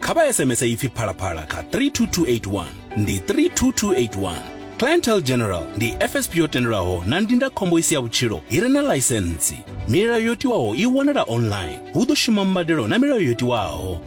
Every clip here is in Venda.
kha vha sms ipfi phalaphala kha 32281 ndi 32281 clientele general ndi fsp yo tendelwaho na ndindakhombo i si ya vhutshilo i re na ḽaisentsi milayo yo tiwaho i wanala online hu ḓo shuma mbadelo na milayo yo tiwaho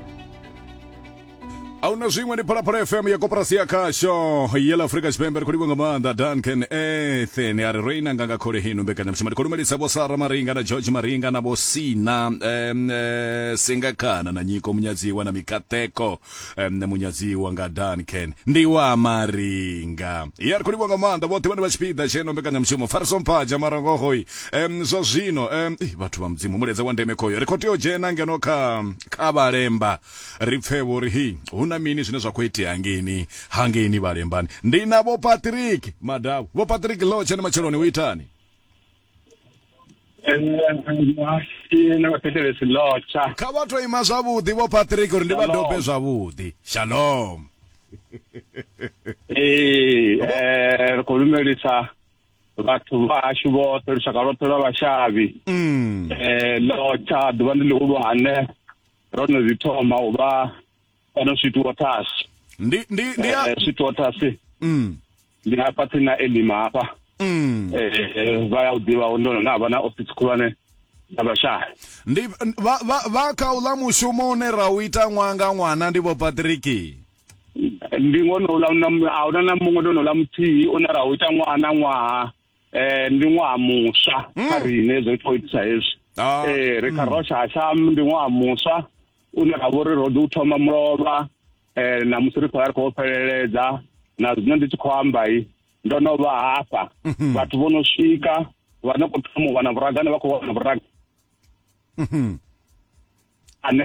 ahuna zwiṅwe ndi phalaphala fm ya koporasi ya khasho yela afurika tshipembe ri khou livha nga maanḓa duncan ethen a ri ro inanga nga khole hino mbekanyamushumo ndi khou lumelisa vho sara maringa na george maringa na vho sina um, uh, singakana na nyiko munyadziwa na mikateko um, munyadziwa nga duncan ndi wa maringa ya ri khou livha nga maanḓa vhoṱhe vhane vha tshipiḓa tsheno mbekanyamushumo fariso mphaja marangohoyi um, zwa zwino um, vhathu vha mudzimu muledza wa ndeme khoyo ri khou tea u dzhena ngeno kha kha vhalemba ri pfe vho ri hi hu na mini zwine zwa khou itea ngeni hangeni vhalembani ndi na vho patrick madau vho patrick lo tshene matsheloni u itani kha vha to ima zwavhuḓi vho patrick uri ndi vha dobe zwavhuḓi shalom ee eh, ri khou lumelisa vhathu vhashu vhoṱhe lushaka lwoṱhe lwa vhashavhi um ḽotsha ḓuvha ndi ḽihulwane ro no zwi thoma u vha kana switwathasi ndi ndi ndi ya Eh, switwathasi mm ndi hafha tsini na elima hafha mm Eh, eh, vha ya u ḓivha ndo no vha na office khulwane dza vhashaya ndi vha vha vha kha uḽa mushumo une ra u ita ṅwaha nga ṅwana ndi vho Patrick ndi ngone uḽa na ahuna na muṅwe ndo no ḽa muthihi une ra u ita ṅwaha na ṅwaha eh ndi ṅwaha muswa hmm. kha riṋe zwo khou itisa hezwi ah. eh ri kha hmm. rosha hasham ndi ṅwaha muswa une ra vhori ro ḓi u thoma mulovha eh na musi ri khou ya ri khou fheleledza na zwino ndi tshi khou amba i ndo no vha hafha mhm. vhathu vho no swika vha no khou thoma u wana vhuragane vha khou wana vhuragane mhm. ane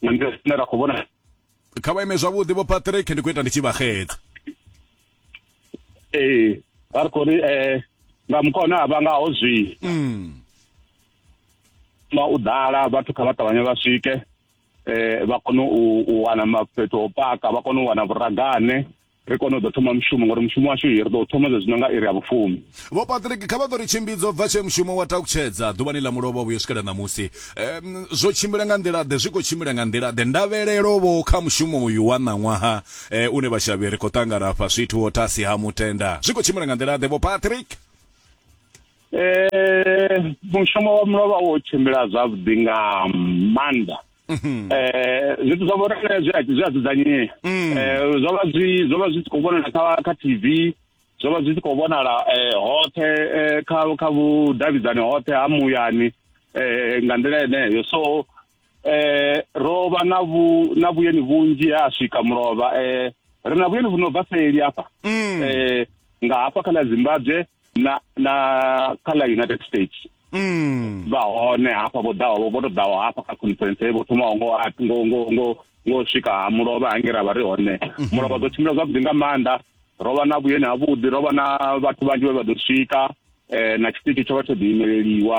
na nḓila ine ra khou vhona kha vha ime zwavhuḓi vho patrick ndi khou ita ndi tshi vha xedza ee vha ri khou ri um nga mukho une a vha ngaho zwi mm. ma u ḓala vhathu kha vha ṱavhanye vha swike um vha kone u wana mafhetho o paka vha kone u wana vhuragane ri kone u ḓo thoma mushumo ngori mushumo washu ri ḓo thoma zwe zwino nga iri ya vhufumi vho patrick kha vha ḓo ri tshimbidza bva tshee mushumo wa takutshedza ḓuvhani ḽa mulovha vhuyo swikela ṋamusi um, zwo tshimbila nga nḓila ḓe zwi khou tshimbila nga nḓila ḓe ndavhelelo vho kha mushumo uyu wa ṋaṅwaha um une vhashavhi ri khou ṱangana fha swithu wo tasi ha mutenda zwi khou tshimbila nga nḓila ḓe vho patrick um mushumo wa mulovha wo tshimbila zwavhuḓi nga maanḓa Mhm. eh zwithu zwa vhona zwi a zwi a dzudzanyea mm. eh zwo vha zwi zwo vha zwi khou vhonala kha kha TV zwo vha zwi khou vhonala eh hoṱhe eh, kha kha vhudavhidzani hoṱhe ha muyani eh nga nḓila yeneyo so eh ro vha na vhu na vhuyeni vhunzhi ha swika mulovha eh ri na vhuyeni vhu no bva seli hafha mm. eh nga hafha kha ḽa Zimbabwe na na kha ḽa united states mm. vha hone hafha vho ḓaho vho to ḓaho hafha kha conference vho thoma ngo ngo ngo ngo ngo swika ha mulovha hange ra vha ri hone mhm. mulovha dzo tshimbila zwavhuḓi nga maanḓa ro vha na vhuyeni ha vhuḓi ro vha na vhathu vhanzhi vhe vha ḓo swika eh na tshiṱitshi tsho vha tsho ḓiimeleliwa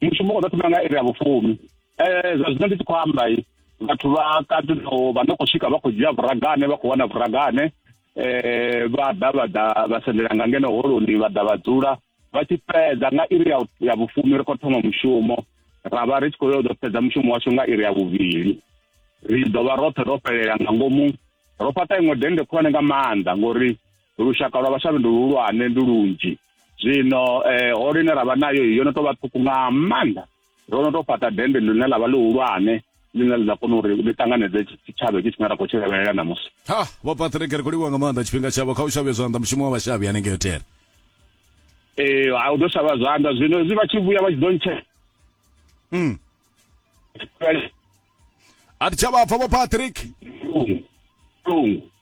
mushumo u ḓo thoma nga iri ya vhufumi um zwa zwino ndi tshi khou amba vhathu vha katino vha no khou swika vha khou dzhia vhuragane vha khou wana vhuragane um vha ḓa vha ḓa vha sendela nga ngeno holoni vha ḓa vha dzula vha tshi fhedza nga iri ya vhufumi ri khou thoma mushumo ra vha ri tshi khou yo ḓo fhedza mushumo washu nga iri ya vhuvhili ri ḓo vha roṱhe ro fhelela nga ngomu ro fhaṱa iṅwe dennde khulwane nga maanḓa ngori Lushaka lwa vhashavhi ndi luhulwane, ndi lunzhi. Zwino eh, holo ine ra vha nayo yo no tou vha ṱhukhu nga maanḓa ro no tou fhaṱa dende ḽine ḽa vha ḽihulwane ḽine ḽi ḓa kona uri ḽi ṱanganedze tshitshavha hetshi tshine ra khou tshi lavhelela ṋamusi ha vho patrick ri khou livhuwa nga maanḓa tshifhinga tshavho kha u shavhe zwanḓa mushumo wa vhashavhi hanengei hotel ee a u ḓo shavha zwanḓa zwino hezwi vha tshi vhuya vha tshi ḓo ntshe mm. a thi tsha vha pfa vho patrick lungu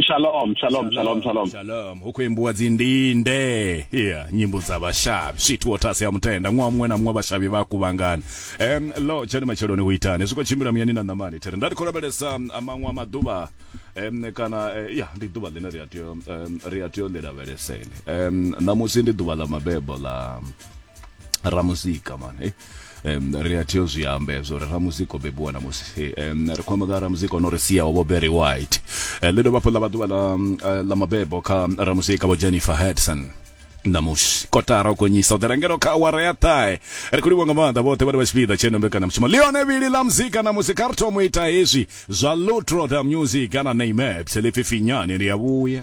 Shalom, shalom, shalom, shalom. shalom hu khou imbiwa dzi ndinde ya nyimbo dza vhashavhi sweet waters ya mutenda ṅwaha muṅwe na muṅwe vhashavhi vha kuvhangana um lo tshani matsheloni hu itani zwi khou tshimbila muyani na ṋamani thiri nda ndi khou lavhelesa um, maṅwe a maḓuvha um, kana eh, ya ndi ḓuvha ḽine ri a tea um, ri a tea u ḽi lavheleseni um, ṋamusi ndi ḓuvha ḽa mabebo ḽa ramuzika mani um, ri a tea u zwi amba hezwo uri ramuzika o bebiwa na musi um, ri khou amba nga ramuzika ono ri sia ovho berry white uh, ḽi dovha hafhu ḽa vha ḓuvha ḽa uh, ḽa mabebo kha ramuzika vho jennifer hedson namusi kotara u gonyisa u ḓirengelo kha awara ya ṱahe ri khou livha nga maanḓa vhoṱhe vhane vha tshipiḓa tsheno mbekanyamushumo ḽione vhili ḽa muzika namusi kha ri thomo ita hezwi zwa lutroda music kana name apps ḽi pfi finyani ri a vhuya